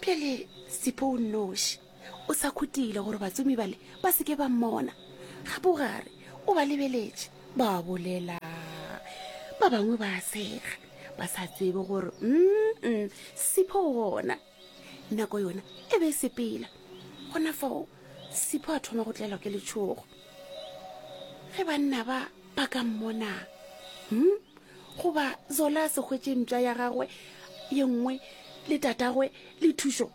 pele sepho o nnoši o sa khutile gore batsomi bale ba seke ba mmona gape o gare o ba lebeletše ba bolela ba bangwe ba sega ba sa tsebe gore mm sepho gona nako yona e be e sepela gona fao sepho a thoma go tlelwa ke letšhogo ge banna ba ba ka mmona hm goba zola a se hwetše mpša ya gagwe ye nngwe le tatagwe le thušo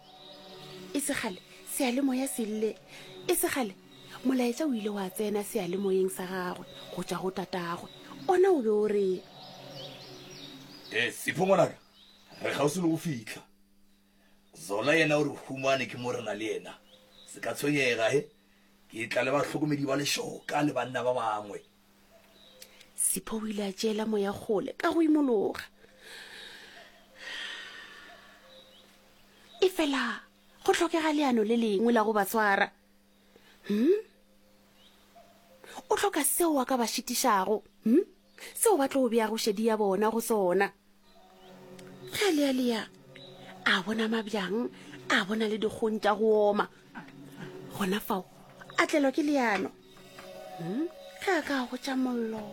e se gale seyalemoya se ile e se gale molaetša o ile wa tsena seyalemoyeng sa gagwe go tšwa go tatagwe ona o be o re e eh, sepho ngwanaka re kgausi le go fihla Zola yena o re, Humane ke mo re na le yena. Se ka tshwenyega, he. Ke tla le bahlokomedi ba lešoka le banna ba bangwe. Sipho o ile a tšeela moya kgole ka go imologa. Efela go hlokega leano le lengwe la go ba swara. hmm? o tlhoka seo wa ka ba šitišago hmm? seo ba tlo o bjago šedi ya bona go sona ge a lealea a bona mabjang a bona le dikgong tša go oma gona fao a tlelwa ke leano hmm? ge a ka go tša mollo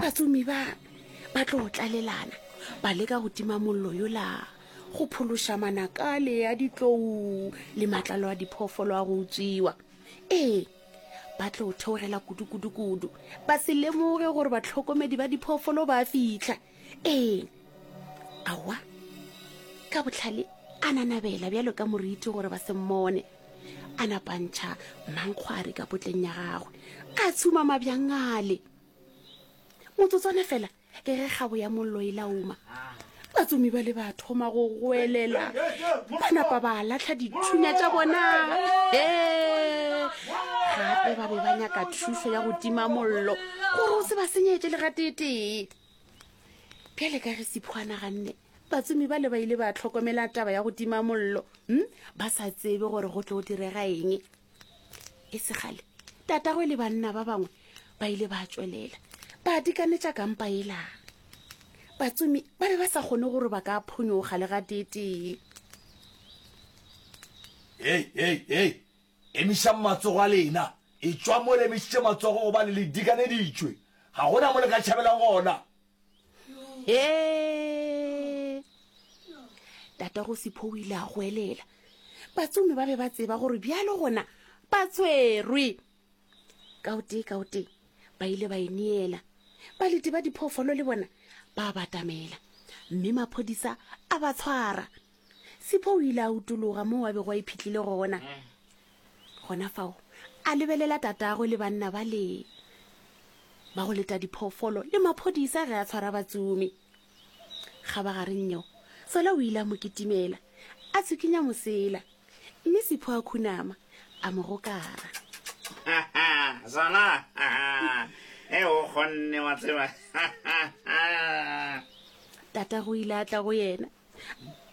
batsumi ba ba tlo tlalelana ba leka go tima mollo yola go phološa manakale a ditlou le matlalo a diphoofolo a go utswiwa ee ba tlo theogela kudu-kudu-kudu ba se lemoge gore batlhokomedi ba diphoofolo ba fitlha ee awa ka botlhale a nanabela bjalo ka moriti gore ba se mmone a napantšha mankgware ka potleng ya gagwe a tshuma mabjangale motsotswana fela ke ge kgabo ya mollo e lauma batsomi ba le ba thoma go goelela ba napa ba latlha dithunya tša bona gape ba be ba nyaka thuso ya go tima mollo gore o se ba senyetse le gateetee pjale ka ge sephwana ganne batsomi ba le ba ile ba tlhokomela taba ya go tima mollo hm? ba sa tsebe gore go tlo direga eng e segale tatagwe le banna ba bangwe ba ile ba tswelela ba dikanetša kampa ela batsomi ba be ba sa kgone gore ba ka phonyoga le ga tetee ei ei ei emišang matsogo a lena e tswa mo le emisitše matsogo gobane le dikaneditšwe ga gona mo le ka tšhabelang gona he tata go sepho o ile a go elela batsomi ba be ba tseba gore bjalo gona ba tshwerwe ka o tee ka o tee ba ile ba e neela ba lete ba diphoofolo le bona ba batamela mme maphodisa a ba tshwara sepho o ile a utologa moo a bego a iphitlhile gona gona fao a lebelela tatagwe le banna ba le ba go leta diphoofolo le maphodisa ge a tshwara batsomi ga ba gare nnyo sola o ile a mo kitimela a tshikinya mosela mme sepho a khunama a mo gokara sola e o kgonne wa tseba tatago ile a tla go yena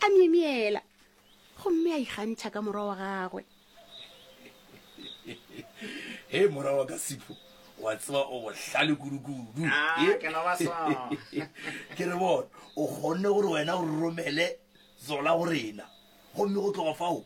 a myemyela gomme a ikgantšha ka morwa wa gagwe e mora wa ka sipho wa tseba o bohlale kudukudu ah, eh? ke re bona o kgonne gore wena o romele zola go rena gomme go tloga fao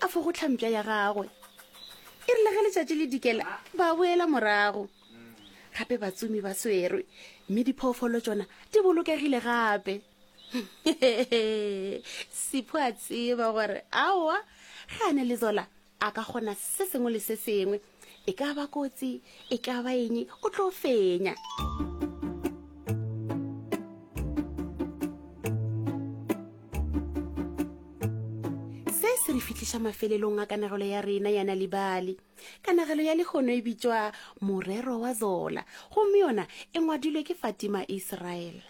a fo go tlhampša ya gagwe e rile ge letšatši le dikela ba boela morago gape batsumi ba swerwe mme diphoofolo tsona di bolokegile gape sepho a tseba gore aowa ga a ne le zola a ka kgona se sengwe le se sengwe e ka ba kotsi e ka ba eng o tlo fenya se se re fihliša mafelelong a kanagelo ya rena ya na libali kanagelo ya lehono e bitšwa morero wa zola gomme yona e ngwadilwe ke fatima israel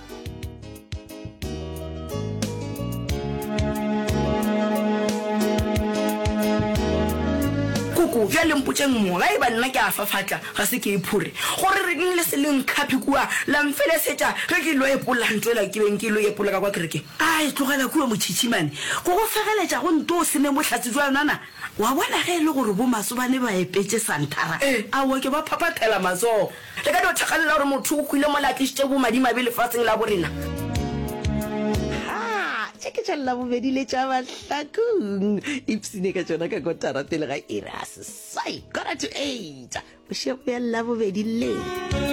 Koko, bjale mpotšeng mo, ga eba nna ke a fafatla, ga se ke ephure, gore reng le se le nkgaphe kua, la nfelesetša ge ke ilo epola nto yela ke beng ke ilo epola ka kwa kerekeng? Ai, tlogela kua motšhitšhimane, go go fegeletša go nto o se ne bohlatse bja yonana. Wa bona ge e le gore bo Masobane ba epetše santhara, aowa ke ba phaphathela matsogo. Re ka no thakgalela gore motho o hwile mola a tlišitše bomadimabe lefaseng la bo rena. Ha, tše ke tša Labobedi le tša Mahlakong. Ipshine ka tšona ka kotara pele ga iri ya seswai, quarter to eight, bošego bja Labobedi le.